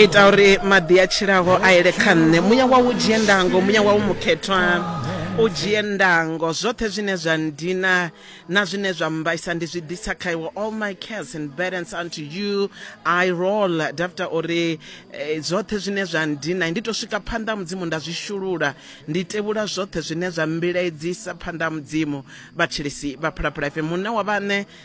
ita uri maḓi a tshilaho a ele kha nṋe muya wau dzhie ndango muya wau mukhethwa u dzhie ndango zwoṱhe zwine zwa ndina na zwine zwa mbaisa ndi zwi ḓisa kha iwe all my cares and burdens unto you i roll dafta uri eh, zwoṱhe zwine zwa ndina ndi to swika phanḓa mudzimu nda zwi shulula ndi tevhula zwoṱhe zwine zwa mbilaedzisa phanḓa mudzimu vhatshilisi vha phalaphala ife munna wa vhaṋe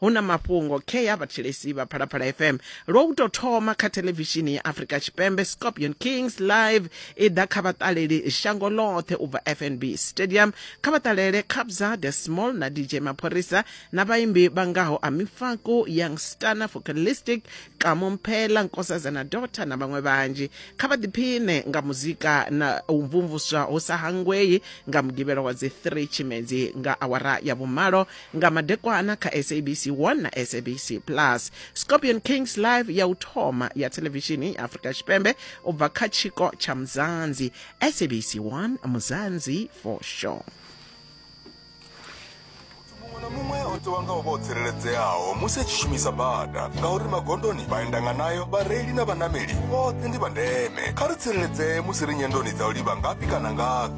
hu na mafhungo khe ya vhathetshelesi vha phalaphala fm lwo u tou thoma kha thelevishini ya afrika tshipembe scorpion kings live i ḓa kha vhaṱaleli shango ḽoṱhe u bva fnb stadium kha vhaṱalele kabza the small na dj mapholisa na vhaimbi vha ngaho amifaku young stana focalistic kamo mphela nkosazana dota na vhaṅwe vhanzhi kha vha ḓiphine nga muzika na u mvumvuswa hu sa hangwei nga mugivhelo wa dzi 3 tshimedzi nga awara ya vhumalo nga madekwana kha sabc 1 na sabc plus scorpion kings live ya u thoma ya thelevishini ya afrika tshipembe u bva kha tshiko tsha muzanzi sabc 1 muzanzi for sure muṅwe na muṅwe o ṱuwa nga u vha o tsireledzeaho musi a tshi shumisa bada ngauri magondoni vhaendanga nayo vhareili na vhanameli vhoṱhe ndi vha ndeme kha ri tsireledzee musi ri nyendoni dza u livha ngafhi kana ngafhi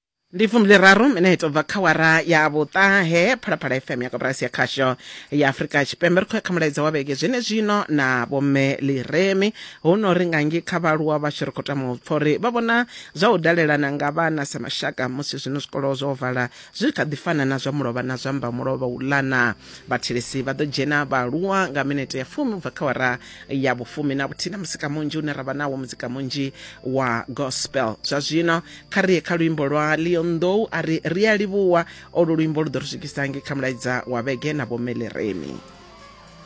ndi fumbiliraru minete ubva kha wara ya vhuṱahe phalaphala fm ya koporasi ya khasho ya afurika tshipembe ri khou ya kha mulaedza wa vhege zwene zwino na vhomme liremi hu no ri ngangi kha vhaaluwa vhashu ri khou tama u pfa uri vha vhona zwa u dalelana nga vhana sa mashaka musi zwino zwikolo zwo vala zwi kha ḓi fana na zwa mulovha na zwa mba mulovha u lana vhathelesi vha ḓo dzhena vhaaluwa nga minete ya fumi ubva kha wara ya vhufumi na vhuthihi na musika munzhi une ra vha nawo muzika munzhi wa gospel zwa zwino kha ri ye kha luimbo lwa leon though a ri ri a livhuwa olu luimbo lu ḓo ri swikisa nge kha mulaidza wa vhege na vhomeleremi